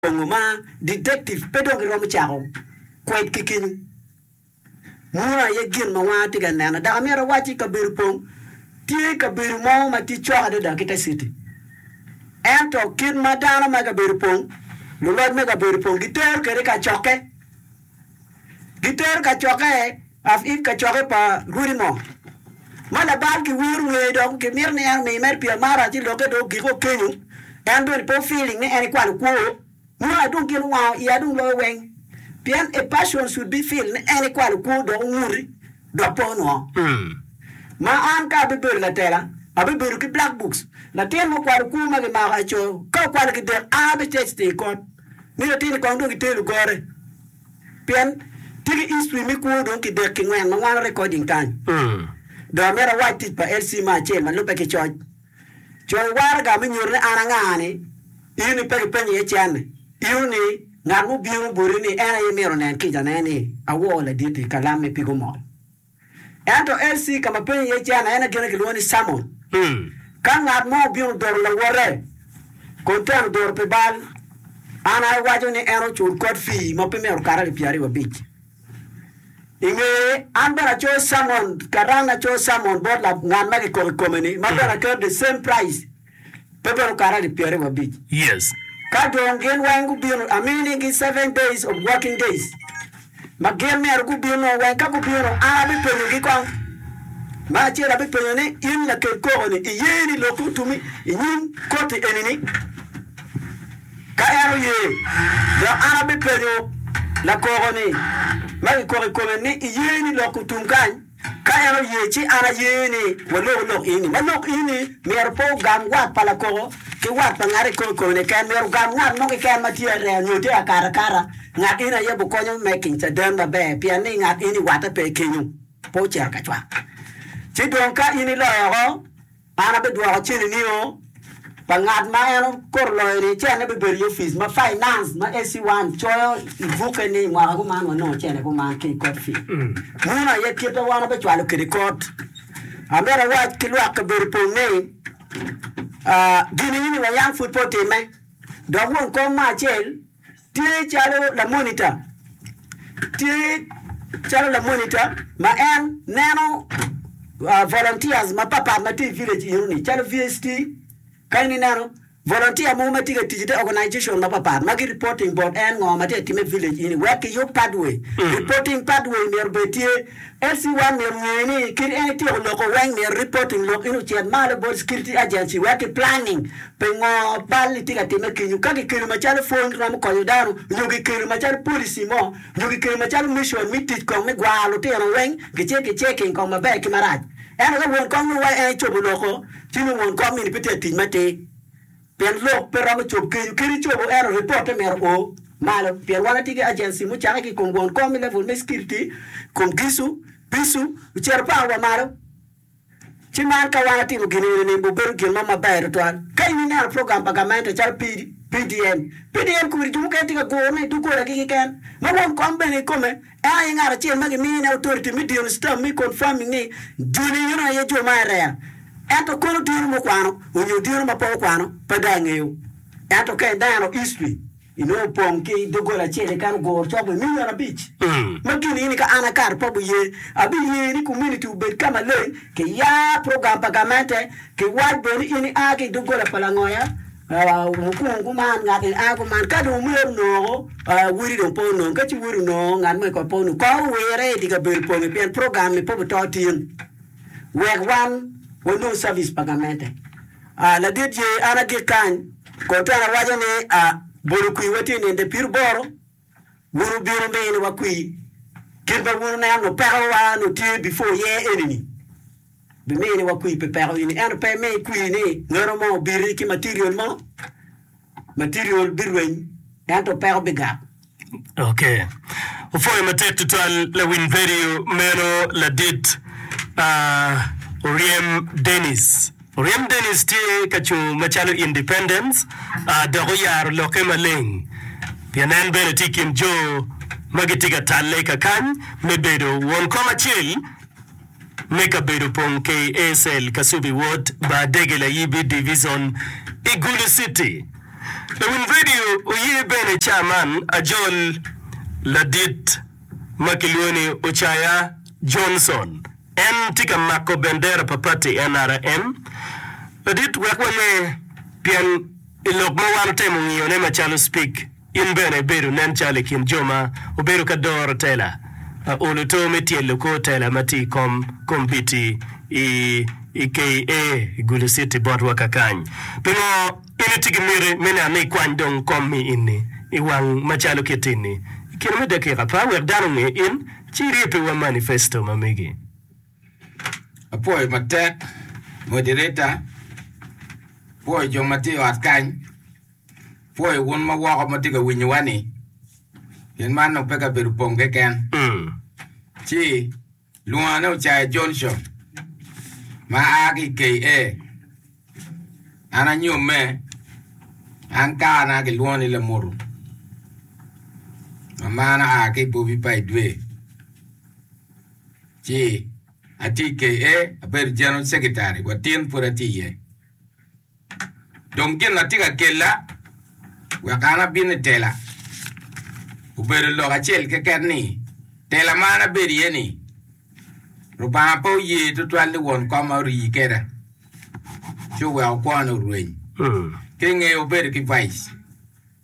Ongo ma detective pe dong giromo cako kwed ki kenyu. Munu aye gin ma wanga tye ka nene. Dok amyero awacci kabedo pong tye kabedo mo ma tye cok adada ki te city. Ento kit ma dano me kabedo pong, luloc me kabedo pong gitero kwede i kacokke. Gitero kacokke of it kacokke pa rwodi mo ma Labal kiwiro ngeye dok kimito ni en omi mere pi amara ci lokke dong ogik o kenyo en bene pe feeling ni en ikwano kwo nyo adong gin owango iye adong loyo weng pien a person should be feel ni en ikwano kwo dok onguti dok pe onongo ma an ka abibedo latela abibedo ki black books latin ma okwano kwo ma gimako aco ka okwano gidek an abicecte ikot Mito atir ni kong dong itelu gore pien tye ki history me kwo dong ki dek ki ngwen ma wango recording kany. Dong amito awac tic pa LC ma acel ma lubbe ki coc. Co i waraga me nyuto ni an anga ni in ni pe kipenyo iye cen-ni. Inu ni ngat mubino boti ni en aye imito nen kica ne ni awoo laditi kalam me pig omol. Ento LC ka ma penyo iye Cana en aye gene kilwongo ni Cammon. Ka ngat mo obino doro lawote, kun teno doro pi bal, an aye waco ni en ocul kot fii ma pe myero okat alip pyeraryo wabic. I ngeye, an bene acoyo Cammon, karan acoyo Cammon bot ngat ma kikobo i kome-ni, ma bene aketo the same price. pe bedo karali pyeraryo abic. Yes. Ka dong gin weng gubino, aminigi seven days of working days ma gin myero gubino weng. Ka gubino, an abipenyogi kong. Ma acel abipenyo ni, in lakel koko ni, iye ni loki otumi inyim koti eni ni? Ka en oye, dok an abipenyo lakoko ni, ma kikoko ikome ni, iye ni loki otum kany? Ka en oye ci an aye ni waloko lok eni, ma lok eni myero pe ogam wat pa lakoko ki wat pa ngat eko kikome-ni keken, myero ogam ngat mo keken ma tye aree nyo tye akatakata, ngat eni aye bikonyo me kiny caden maber, pien ni ngat eni watte pe kenyo, pe ocito ka cwak. Ci dong ka in iloyo oko. An abidwoko cilinio pa ngat ma en okoto loyo-ni, cene bibedo i opic ma finance ma SC1 coyo i bukke ni mwaka kuman wanongo cene kuman ki i court fee. Muno aye kit ma wan wabicwalo kwede court. Amito awac ki lwak kabedo pong ni, gin eni ni wayang pud pe otimme, dok won kom mo acel, Tye calo lamonita. Tye calo lamonita ma en neno volunteers mapatpat ma tye i village eno ni calo VST ka in ineno volunteer mogo ma tye ka tic i te organization mapatpat ma gi reporting bot en ngo ma tye ka timme i village eni wek kiyub pathway. Reporting pathway myero bed tye Esi wan myero ongee ni kit en ityeko loko weng myero reporting lok in ocit malo bot security agency wek ki planning pi ngo bal itye ka time kenyo ka ki kelo macalo pwony romo konyo dano nyo ki kelo macalo policy mo nyo ki kelo macalo mission me tic kong me gwaro lutino weng ki ce ki checking kong maber ki marac ento ka won kom nongo wai en icobo loko ci nongo won kom eni pe tye ka tic matir. Pien lok pe romo cob kenyo kadi ecobo ento ripotte myero o malo pien wan watye ki agency mucakke ki i kom won kom me level me security i kom gicu, bicu, ocito power wa malo. Ci man ka wan atimo gin eni ni obedo gin mo maber tutwal. Ka in ineno program pa gamente calo PDN, PDN kodi jo mukene tye ka gurone i dogolagi keken ma won kom bene i kome Ento aye ngat acel ma gimiyo nyinge authority me dino stamp me confirming ni joni enoni aye jo ma area. Ento kono dino mukwano onyo dino ma pe okwano pe dong angeyo. Ento ka ineno history inongo opong ki dogola acel keken oguro cok me million abic ma gin ni ka an akato pe abiye abiye ni community obed ka maleng ki ya program pa gamente ki wac bene ni in i a ki idogola pa langoya Wukong kuman ngat ni a kuman ka dong myero onongo wodi dong pe onong ka ci wodi onongo ngat mo kong pe onong kong owire idye kabedo pongi pien program ni pe obuto tin wek wan wanong cabic pa gamente. Ladit ye an agik kany kong twero awaco ni bolo kwi wa tye ninde piriboro. Wun wubino neno wa kwi kit ma wun wuneno peko wa nyo tye before ye eni ni bi mini wa kwi pi peko eni ento pe mi kwi ni ngero mo obiti ki material mo material bi rweny ento peko bi gak. Ok. Wupwoyo matek tutwal lawiny vedio meno ladit. Aah oryem Dennis. Rem Dennis tye ka cung macalo independent dok oyaro lokke maleng pien en bene tye i kin jo ma gitye ka talle ka kany me bedo won kom acel me kabedo pong KASL Kasubi Ward bar Dege Layibi Divizon i Gulu City. Lawiny redio oye bene caman ajol ladit ma kilwongo ni Ocaya Johnson. En tye ka mako bendera pa pati nrm ladit wek wame pien i lok ma wan otemo ngiyone macalo Spik in bene ibedo nen calo i kin jo ma obedo ka doro tela pa olo to me tyelo kor tela ma tye i kom kombiti i KA i Gulu City botwa kakany. Pingo? In itye ki miti me neno ni ikwany dong kom mi in-ni i wang macalo kitti-ni i kine me dakika apar wek dano onge in, ci irye pi wa manifesto ma megi. Apwoyo matek moderator, pwoyo jo ma tye i ot kany, pwoyo wun ma woko ma tye ka winyowa-ni, gin man dong pe kabedo opong keken, ci. Lungane Ocaya Johnson ma a ki i KA. An anyomme, an karana kilwongo ni Lamutu. Mamana a ki i Bobi Pai Dwe. Ci atye i KA, abedo General Secretary, watin pud atye iye. Dong gin ma tye ka kella wek an abin i tela obedo lok acel keken ni, tela ma an abedo iye ni, Lubanga pe oye tutwal ni won koma orii keda ci oweko kwona orweny. Ki ngeyo obedo ki vice.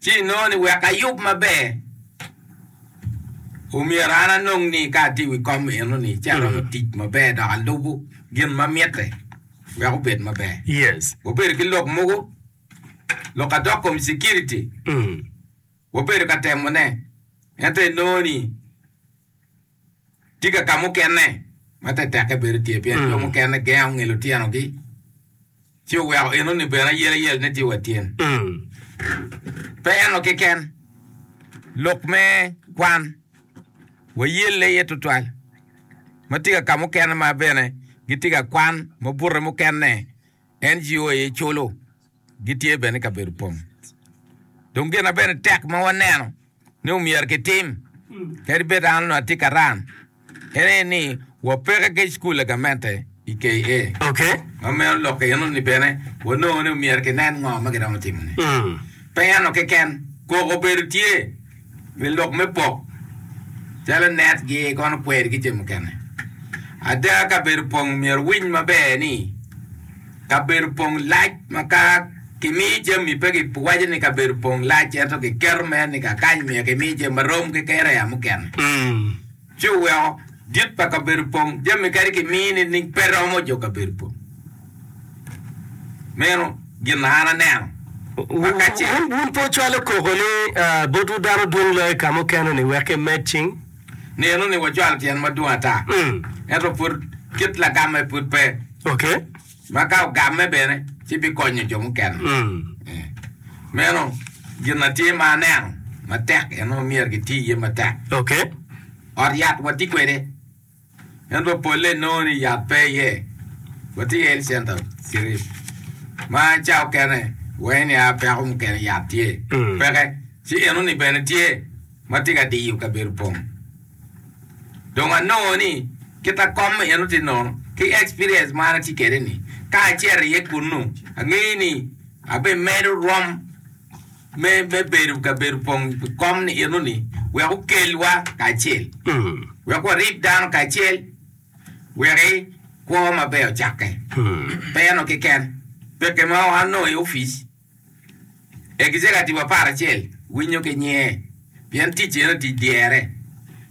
Ci inongo ni wek ayub maber, omyero an anong ni ka atye i wi kom enoni ci aromo tic maber dok alubo gin ma mitte wek obed maber. Wabedo ki lok mogo, lok a dok kom cikiriti, wabedo ka temone, ento inongo ni, Tika ka mukene ma tetekke bedo tye pien jo mukene gengo ngilo tyenogi ci oweko enoni bene ayelayeline tye wa tyen? Pe eno keken, lok me kwan wayelle iye tutwal ma tika ka mukene ma bene gitye ka kwan ma bute mukene NGO aye culo. gitye bene ka bedo pong. Dong gin ma bene tek ma waneno ni omyero kitim, kadi bed an onongo atye ka ran, en aye ni wapeke ki Cukul pa Gamente i KA. Ma meno lok enoni bene wanongo ni omyero kinen ngo ma giromo timone. Pe eno keken, koko obedo tye. Pi lok me pok, calo netgi kono kwer ki ce mukene. Ada, kabedo pong myero winy maber ni kabedo pong lac ma ka kimiyo jami pe kiwaco ni kabedo pong lac ento kiketo mere ni kakany myero kimiyo jami marom ki kereya mukene. ci oweko dit pa kabedo pong jami kadi ki mii nining pe romo jo kabedo pong meno gin na an aneno aka ce. Wun pe wucwalo koko ni botwu dano dwong loyo ka mukene ni wek ki med cing? Nenu ni wacwalo tyen madwong ata ento pud kit lagamme pud pe. Ok. Ma ka ogamme bene, ci bikonyo jo mukene. Meno gin ma tye ma aneno matek en ma myero giti iye matek. Ot yat watye kwede, ento polle inongo ni yat pe iye. Watye ki Health Center Sirip, ma ca okene waye ni a peko mukene yat tye peke, ci enoni bene tye ma tye ka diyo kabedo pong. Dong anongo ni kit a kom meno tye nono ki experience ma an atye kwede ni ka acito iye kunnu angeyo ni abimedo rwom me me bedo ka bedo pong pi kom ni eno ni wek okelwa kacel wek warib dano kacel weki kwo maber ocakke pe eno keken peke ma anongo i office E kicaka tipo apar acel winyo ki nyinge pien tic eno tic dyere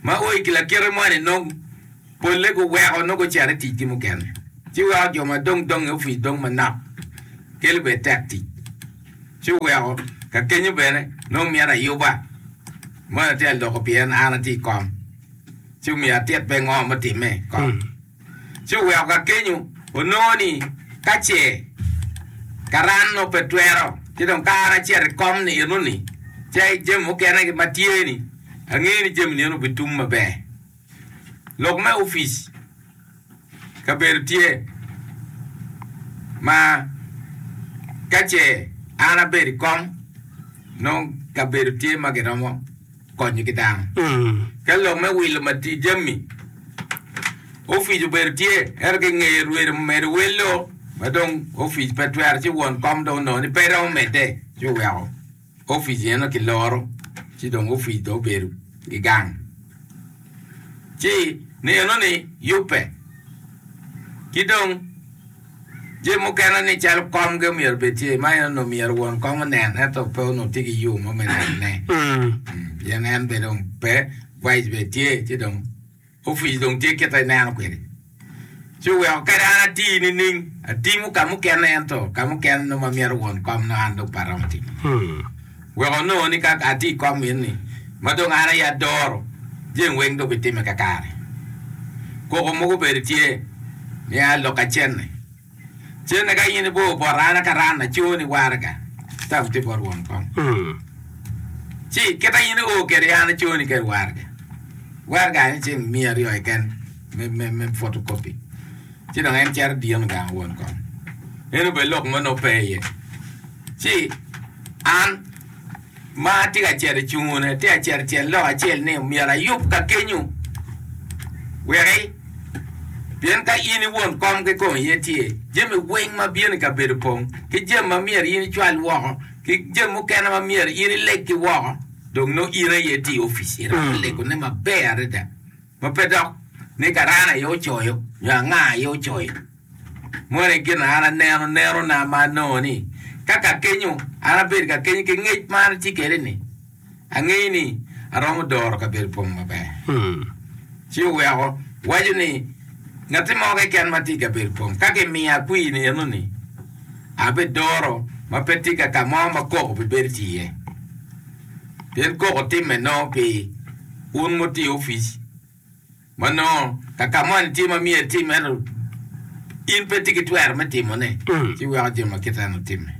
ma ooi ki lakite mo ni nong pole gu weko nongo gucito i tic gi mukene ci weko jo ma dong dong i office dong manok kelo bene tek tic ci oweko ka kenyo bene nongo mito ayuba moni atye aloko pien an atye i kom ci omiyo atit pe ngo me time kong. ci oweko ka kenyo onongo ni ka ce karan nongo pe twero ci dong ka an acito i kom ni eno ni ce jami mukene ma tye ni angeyo ni jami ni obi tum maber lok me opic kabedo tye ma ka ce an abedo i kom nongo kabedo tye ma giromo konyo ki dano. Ka lok me wilo matidi jami, opic obedo tye, ento ki ingeye rwede medo welo ma dong opic pe twero ci won kom dong onongo ni pe romo medde ci oweko opic eno kiloro ci dong opic dong obedo i gang. Ci neno ni yubbe ki dong. Jami mukene ni calo komgi omyero obed tye, ma en onongo myero won kom onen, ento pe onongo tye ki yo mo me nenone, pien en bene dong pe, vice bene tye, ci dong opic dong tye kite ineno kwede. Ci oweko kadi an ati nining? Atimo ka mukene ento ka mukene nongo ma myero won kom nongo an dong pe aromo timo. Wek onongo ni ka atye i kom in-ni, ma dong an aye adoro, jami weng dong bitimme kakare. Koko mogo bene tye, miya lok ka cente. Cente ka in ibor bota an akaran acoo ni waraga, tam tye bot won kom. Ci kita in ior kede an acoo ni kede waraga. Waraga aye ceng miya aryo keken me photocopy. Ci dong en cito dino gang won kom. Eno bene lok mo nongo pe iye. Ci. An, ma atye ka cito i cungune, atye ka cito icel lok acel ni myero ayub ka kenyu weki, pien ka in i won kom kikome iye tye, jami weng ma bino i kabedo pong, ki jami ma myero in icwal woko, ki jami mukene ma myero in ileg ki woko, dong nongo in aye tye i opic. Irabo legone maber adada. ma pe dok ni Karani aye ocoyo nyo anga aye ocoyo. Moni gin an aneno nenona ma anongo ni ka kakenyo an abedo kakenyo ki ngec ma an atye kede ni angeyo ni aromo doro kabedo pong maber. Ci oweko waco ni ngati mo keken ma tye i kabedo pong ka kimiya kwir ni eno ni abidoro ma pe tye ka kamo ma koko bibedo tye iye. Pien koko timme nongo pi un wutiyo opic ma nongo ka ka moni tye ma myero itim ento in pe itye ki twero me timone, ci iweko jami ma kite eno timme.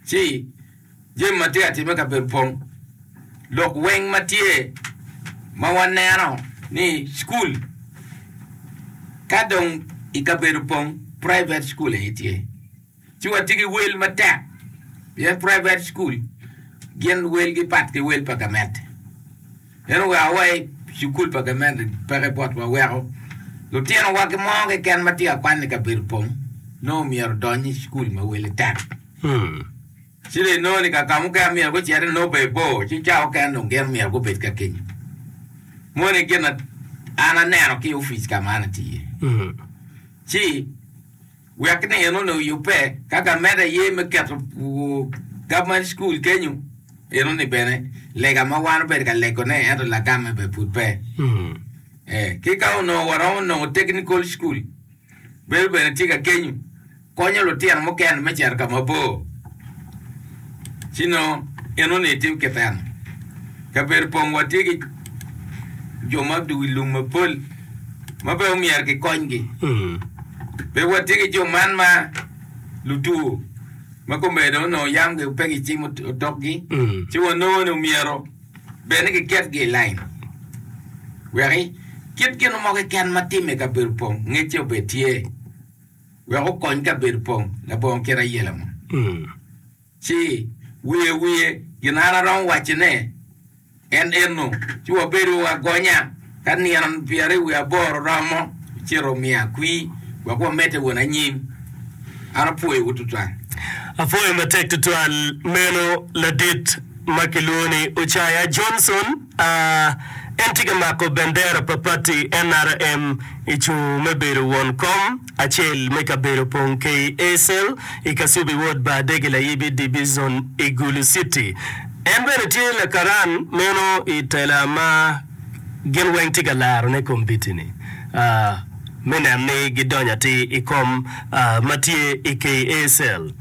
Ci jami ma tye ka timme i kabedo pong, lok weng ma tye ma waneno ni cukul ka dong i kabedo pong private cukul aye tye. Ci watye ki wel matek pien private school gin welgi pat ki wel pa gamente. En oweko wa i cukul pa gamente peke botwa weko lutinowa ki mo keken ma tye ka kwan i kabedo pong nongo myero odony i cukul ma wele tek. Ci dong inongo ni ka ka mukene myero gucit i nobbe bor ci ca mukene dong gin myero gubed ka kenyo. Moni gin an aneno ki i opic ka ma an atiye. Ci Wek ni en onongo yubbe ka gamed aye me keto Government School kenyo, eno ni bene lega ma wan obedo ka legone ento lagamme bene pud pe. Eh, ki ka onongo waromo nongo Technical School, bedo bene tye ka kenyo, konyo lutino mukene me cito ka mabor. Ci nongo in onongo itye keken. Kabedo pong watye ki jo ma odwogo i lum mapol ma pe omyero kikonygi. Pe watye ki jo man ma lutwo ma kome dong onongo yam gi pe gicimo otokgi, ci wanongo ni omyero bed ni kiketgi i lain wek kit gin mo keken ma timme i kabedo pong ngecce obed tye. wek okony kabedo pa labongo kite ayela mo. Ci wiye wiye gin an aromo wacone en eno, ci wabedo wagonya. Ka nino pyeraryo wiye aboro romo, ocito omiya kwir wek wamedde won anyim. An apwoyowu tutwal. Apwoyo matek tutwal meno ladit ma kilwongo ni Ocaya Johnson. A En tye ka mako bendera pa pati NRM i cung me bedo won kom acel me kabedo pong Kei Acel i Kasubi Wod Baadege Layibi Dibizon i Gulu Citi. En bene tye lakaran meno i tela ma gin weng tye ka laro ne kombiti ni me neno ni gidonyo atir i kom ma tye i Kei Acel.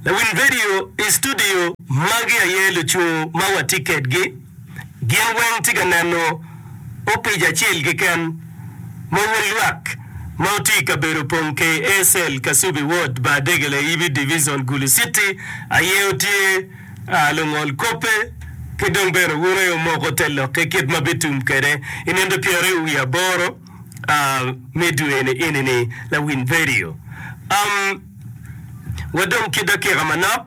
Lawiny vedio i studio. Magi aye lucung ma watye kedgi. gin weng tye ka neno opic acel keken ma wun lwak ma wuti i kabedo pong KA cell Kasubi ward Bar Degele Ibi Division Gulu City aye wutye aa lungol kobbe ki dong bene wun aye wumoko te lok ki kit ma bitum kwede inonde pyeraryo wiye aboro aa me dwe ni eni ni lawiny vedio am wa dong ki dakika manok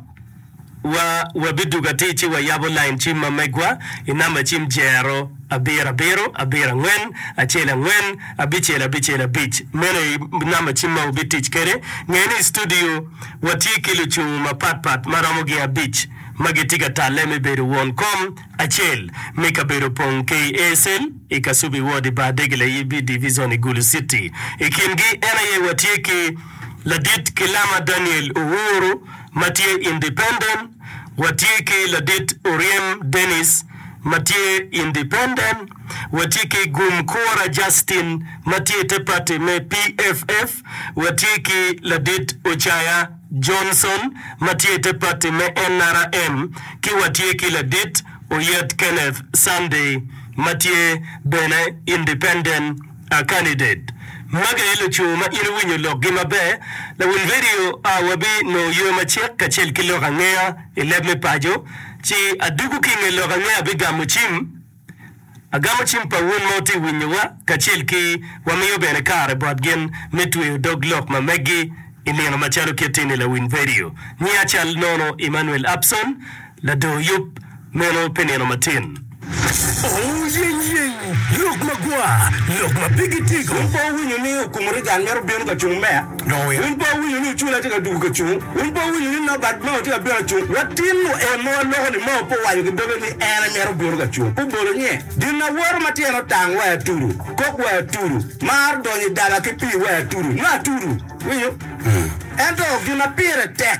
Wa, wabidugo atir ci wayabo lain cim ma megwa i namba cim jero, abiro abiro, abiro angwen, acel angwen, abicel abicel abic. Meno aye namba cim ma wubitic kwede. Nge ni i studio watye ki lucung mapat pat ma romo gin abic ma gitye ka talle me bedo won kom acel me kabedo opong ki i ASL, i Kasubi Ward, i Bar Dege Layibi Divizon i Gulu Citi. I kingi en aye watye ki Ladit Kilama Daniel Uhuru, ma tye independent, watye ki Ladit Oryem Dennis ma tye independent, watye ki Gum Kura Justin ma tye i te pati me PFF, watye ki Ladit Ocaya Johnson ma tye i te pati me NRM, ki watye ki Ladit Oyet Kenneth Sunday ma tye bene independent. A Candidate, Magi aye lucu ma in iwinyo lokgi maber. Lawil redio, A wabi nongo yo macek kacel ki lok angeya i leb me paco, ci adwogo ki i nge lok angeya abigamo cim. Agamo cim pa wun ma wutye ka winyowa kacel ki wamiyo bene kare bot gin me tweyo dog lok ma meggi i nino macalo kit-ti ni lawil redio. Nyiya cal nono Emmanuel Upson. Lador yub meno pe nino matin. Ooh yeny yeny lok magwar lok ma pigi tigo. Wun pe wuwinyo ni okumuri gang mito bino ka cung meya? Wun pe wuwinyo ni ocula tye ka dugu ka cung? Wun pe wuwinyo ni Norbert Mao tye ka bino ka cung? Latin-nu en ma waloko-ni Mao pe owaco ki doge ni en aye mito bino ka cung. Pe obolo nye. Gin awoto ma tyene otang wa atudu. Kok wa atudu. Mar donyo i daba ki pii wa atudu. Nyo atudu. Iwinyo? Ento gin ma pire tek.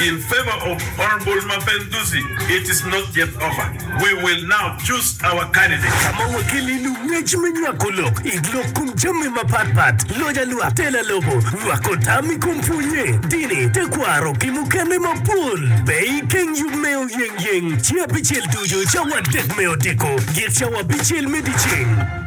In favor of Honourable Mapenduzi it is not yet over we will now choose our candidate. Ka ma wakelle i lung ngec me nywako lok i lok kom jami mapat pat, loja lwak, tela lobo, nywako tam i kom pwonye, dini, tekwaro ki mukene mapol, pe i keng yub me oyeng yeng, ci apicel ducu cawa adek me odiko, git cawa apicel me dyeceng.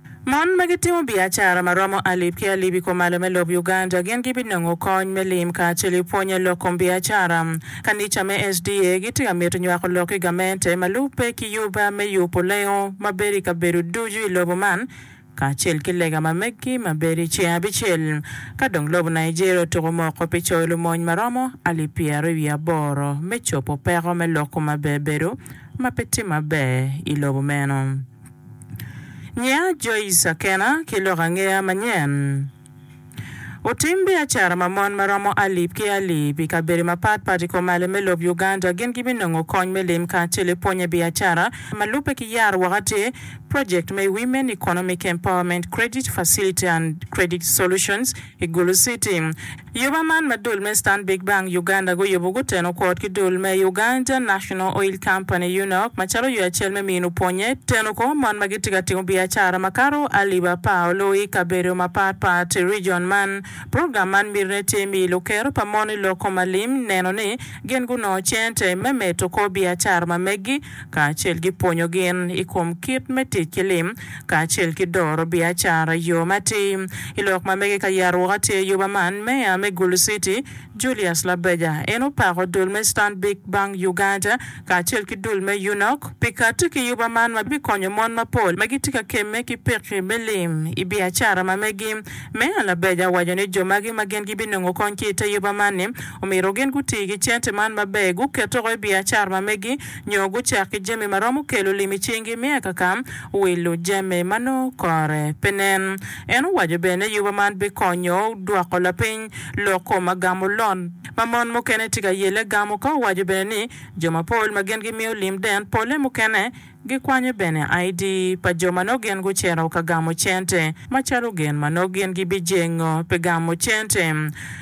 Mon ma gitimo biacara ma romo alip ki alip i kumalo me lobo Uganda gin gibinongo kony me lim kacel i pwonye lok kom biacara. Kanica me SDA gitye ka mito nywako lok ki gamente ma lubbe ki yuba me yubo lengo ma bedo i kabedo ducu i lobo man kacel ki lega ma meggi ma bedo i ceng abicel ka dong lobo Nigeria otuko moko pi coyo lumony ma romo alip pyeraryo wiye aboro me cobo peko me lok kom abebedo ma pe tye maber i lobo meno. Nyiya Joyce Akena ki lok angeya manyen. Otim biacara ma mon ma romo alip ki alip i kabedo mapat pat i komale me lob Uganda gin gibinongo kony me lim kacel i pwonye biacara. Ma lubbe ki yaro woko tye project me Women Economic Empowerment Credit Facility and Credit Solutions, I Gulu City, Yuba man ma dul me Stanbic Bank Uganda guyubo guteno kwot ki dul me Uganda National Oil Company, UNOC, macalo yo acel me mino pwonye teno kor mon ma gitye ka timo biacara makato alip apar oloo i kabedo mapat pat i region man. Program man mitine tye miyo lukero pa mon i lok kom alim neno ni gin gunongo cente me medo kor biacara ma meggi kacel ki pwonyo gin i kom kit me tic ki lim kacel ki doro biacara i yo matir. I lok ma mege ka yero woko atir ayoba man, Meya me Gulu City, Julius Labeja, en opako dul me Stanbic Bank Uganda kacel ki dul me UNOC pi kati ki yoba man ma bikonyo mon mapol ma gitye ka kemme ki pekki me lim i biacara ma megi. Meya Labeja owaco ni jo magi ma gin gibinongo kony ki i te yoba man-ni, omyero gin guti ki cente man maber, guketego i biacara ma megi, nyo gucak ki jami ma romo kelo lim i cingi me akaka wilo jami ma nongo kore pe nen. En owaco bene ni yuba man bikonyo dwoko lapiny lok kom agamo lon ma mon mukene tye ka yelle gamo ka owaco bene ni jo mapol ma gin gimiyo lim den pole mukene gikwanyo bene ID pa jo ma nongo gin gucito ka gamo cente macalo gin ma nongo gin gibijengo pi gamo cente.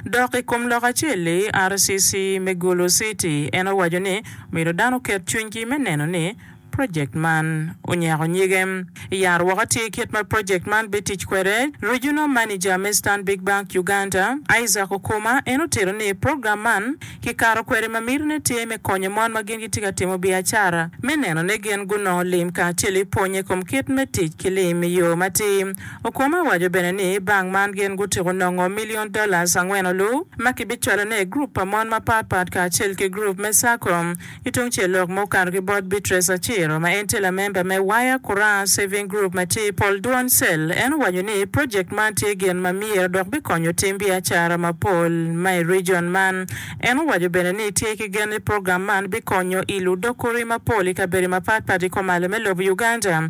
Dok i kom lok acel-li, RCC me Gulu City en owaco ni Myero dano oket cwinygi me neno ni projekt man onyako nyige. Yat woko atir kit ma projekt man bitic kwede. Regional Manager me Stanbic Bank Uganda, Isaac Okuma en otito ni program man kikato kwede ma mitine tye me konyo mon ma gin gitye ka timo biacara me neno ni gin gunongo lim kacel i pwonye kom kit me tic ki lim i yo matir Okumu owaco bene ni bank man gin gutyeko nongo million dollars angweno lu ma kibicwalo ne i group pa mon mapat pat kacel ki group me sacco. Ki tung cel lok ma okato ki bot Beatrice Aciro ma en tye lamember me Wire Kuraa Saving Group ma tye i pol dwon cell en owaco ni project man tye gin ma myero dok bikonyo tim biacara mapol ma i region man. En owaco bene ni tye ki gen ni program man bikonyo i ludok kuri mapol i kabedi mapat pat i komalo me lobo Uganda.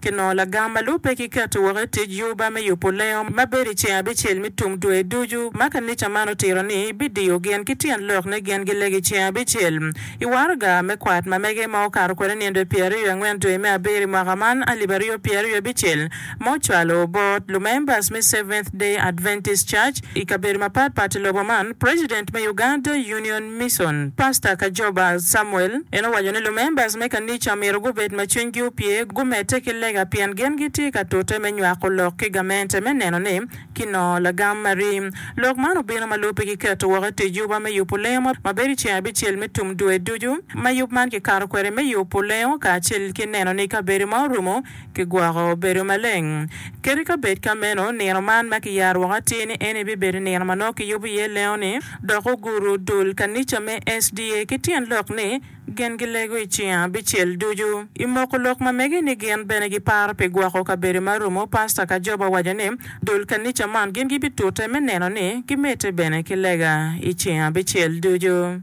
ki nongo lagam ma lubbe ki keto woko i tic Juba me yubo lengo ma bedo i ceng abicel me tum dwe ducu, ma kanica man otito ni bidiyo gin ki tyen lok ne gin gilego i ceng abicel i waraga me kwat ma mege ma okato kwede nyen dwe pyera ryo angwen dwe me abiro i mwaka man alip aryo pyera ryo abicel ma ocwalo bot lumembers me Seventh Day Adventist Church i kabedo mapat pat i lobo man President me Uganda Union Mison, Pasta Kajoba Samuel en owaco ni lumembas me kanica myero gubed ma cwinygi opye, gumedde ki lega pien gin gitye ka tute me nywako lok ki gamente me neno ni kinongo lagam ma ri. Lok man obino ma lubbe ki keto woko i tic yuba me yubo lengo ma bedo i ceng abicel me tum dwe ducu, ma yub man kikato kwede me yubo lengo kacel ki neno ni kabedo ma orumo Kigwoko bedo maleng. Ket i kabed ka meno, nino man ma kiyaro woko atir ni eni bibedo nino ma nongo kiyubo iye lengo-ni, dok oguru dul kanica me SDA ki tyen lok ni, Gin gilego i cinga abicel ducu. I moko lok ma mege ni gin bene giparo pi gwoko kabedo ma romo pasta ka joba owaco ni dul kanica man gin gibitute me neno ni gimedde bene ki lega i cinga abicel ducu.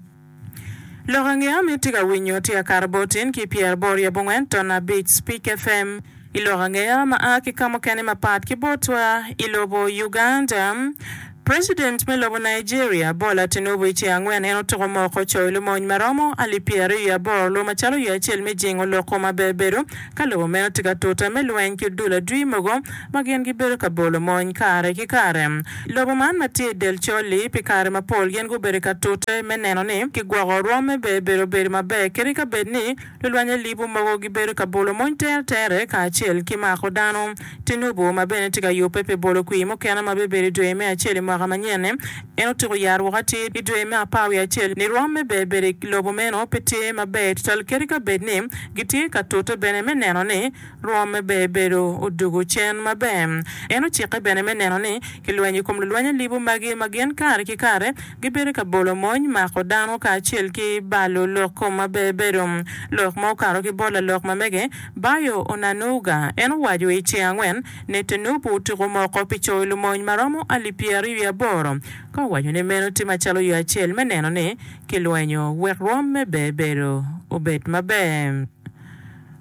Lok ange ama itye ka winyo tye akato bot in ki pyer aboro ryo abongwen ton abic Speak FM i lok ange ama a ki ka mukene mapat ki botwa i lobo Uganda President me lobo Nigeria Bola Tinubu i ce angwen en otuko moko coyo lumony maromo alip pyer aryo i aboro lwo macalo yo acel me jingo loko ma bebedo ka lobo meno tye ka tuta me lweny ki odul adwi mogo ma gin gibedo ka bolo mony kare ki kare. Lobo man ma tye i del col-li, pi kare mapol gin gubedo ka tute me neno ni kigwoko rwomme be bedo obedo maber kadi ka bed ni lulwanye libu mogo gibedo ka bolo mony tere tere kacel ki mako dano. Tinubu, ma bene tye ka yubbe pi bolo kwir mukene ma bibedo i dwe me acel i mwaka manyen-ni, en otyeko yaro woko atir i dwe me apar wiye acel ni rwomme be bedo i lobo meno pe tye maber tutwal kadi ka bed ni gitye ka tute bene me neno ni Rwomme bene bedo odwogo cen maber. En ocikke bene me neno ni kilwenyo i kom lulweny alibu magi ma gin kare ki kare gibedo ka bolo mony, mako dano kacel ki balo lok kom ma bebedo. Lok ma okato ki bot lalok mamege Bayo Onanuga, en owaco i ceng angwen ne Tinubu otuko moko pi coyo lumony ma romo alip pyeraryo wiye aboro ka owaco ni meno tye macalo yo acel me neno ni kilwenyo wek rwomme bebedo obed maber.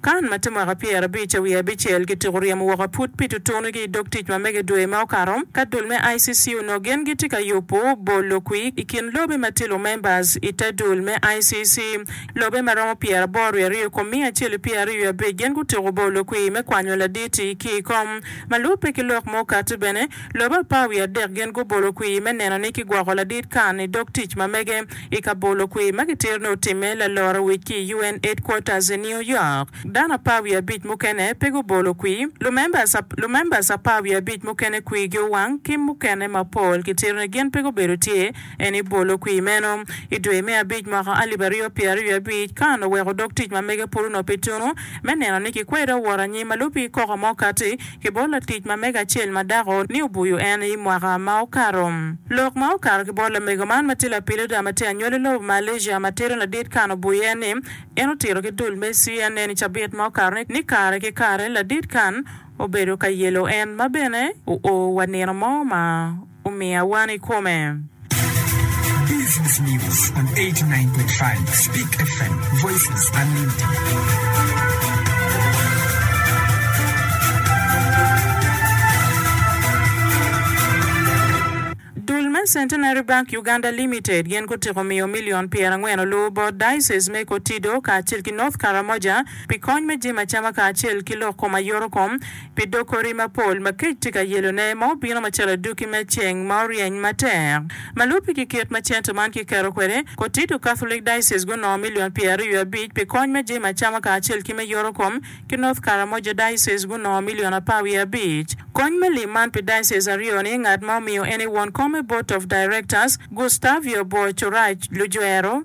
Kan ma tye mwaka pyerabic wiye abicel gitiko ryemo woko aput pi tutunugi i dog tic ma mege dwe ma okato ka dul me ICC onongo gin gitye ka yubo bol lokwi i kin lobe ma tye lumembers i te dul me ICC. Lobe ma romo pyeraboro wiye aryo i kom miya acel i pyeraryo wiye abic gin gutiko bol lokwi me kwanyo laditi ki i kom ma lubbe ki lok ma okati bene lobe apar wiye adek gin gubolo kwi me neno ni kigwoko ladit Kan i dog tic ma mege I kabolo kwir ma kitito ni otimme laloro wic ki i UN headquarters i New York, dano apar wiye abic mukene pe gubolo kwir. Lumembers apar wiye abic mukene kwirgi owang ki mukene mapol kitito ni gin pe gubedo tye en i bolo kwir meno. I dwe me abic mwaka alip aryo pyer aryo abic, Khan oweko dog tic ma mege pud onop i tunu me neno ni kikwedo woro anyim ma lubi koko ma okatti ki bot latic ma mege acel ma dako ni obuyo en i mwaka ma okato. Lok ma okato ki bot lamego man ma tye lapilida ma tye anywali lobo Malaysia ma tito ladit kan obuyo en ni en otito ki dul me CNN i cabit ma okato ni ni kare ki kare ladit kan obedo ka yelo en ma bene oo wa nino mo ma omiya wan i kome. Business News on 89.5 Speak FM, Voices Unlimited. Dul me Centenary Bank Uganda Limited gin gutyeko miyo milion pyerangwen oluwu bot Diocese me Kotido kacel ki North Karamoja pi kony me jemo acama kacel ki lok kom ayoto kom pi dog kori mapol ma kec tye ka yelone ma obino macalo aduki me ceng ma oryeny matek. Ma lubbe ki kit ma cente man kiketo kwede, Kotido Catholic Diocese gunongo milion pyeraryo abic pi kony me jami acama kacel ki me yoto kom, ki North Karamoja Diocese gunongo milion apar wiye abic. Kony me lim man pi diocese aryo-ni ngat ma omiyo ene won kom me Board of Directors, Gustavio Boachouraj Lujwero.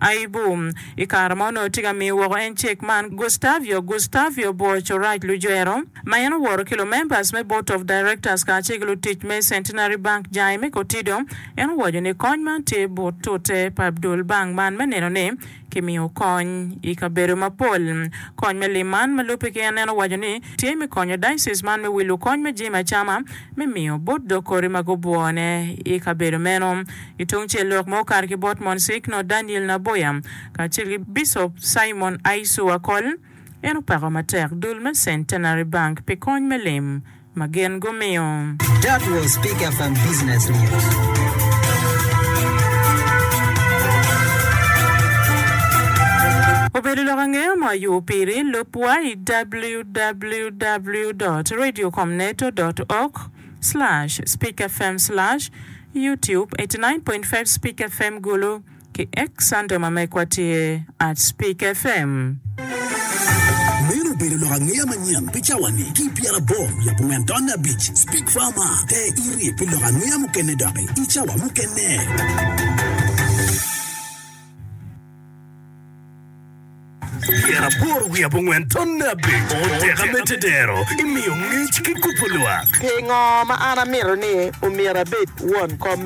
Aibu. I kare ma onongo tye ka miyo woko en cek man, Gustavio Gustavio obworo Courage Lujwero, ma en oworo ki lumembers me Board of Directors kacel ki lutic me Centenary Bank jange me kotido. En owaco ni kony man tye but tute pa dul bank man me neno ni kimiyo kony i kabedo mapol. Kony me lim man ma lubbe ki en, en owaco ni tye me konyo diocese man me wilo kony me jami acama me miyo bot dog kori ma gubwone i kabedo meno. Ki tungcel lok ma okato ki bot Monsignor Daniel Naboya kacel ki Bicop Simon Aisu Akol, en opako matek dul me Centenary Bank pi kony me lim ma gin gumiyo. That was speaker from business news. Obedo lok angeya ma oyubu piri, lub wa i www. www.radiocomneto.org/speakfm/youtube89.5speakfm Gulu ki X Sande ma megwa tye @speakfm. Meno obedo lok angeya manyen pi cawa-ni ki i pyeraboro wiye abongwen taun abic. Speak Farmer, Te iri pi lok angeya mukene doki i cawa mukene. Tyen aboro wiye abongwen tonne abec oteka me tedero imiyo ngec ki kubo lwak. Pingo ma an amito ni omyero abed won kom me?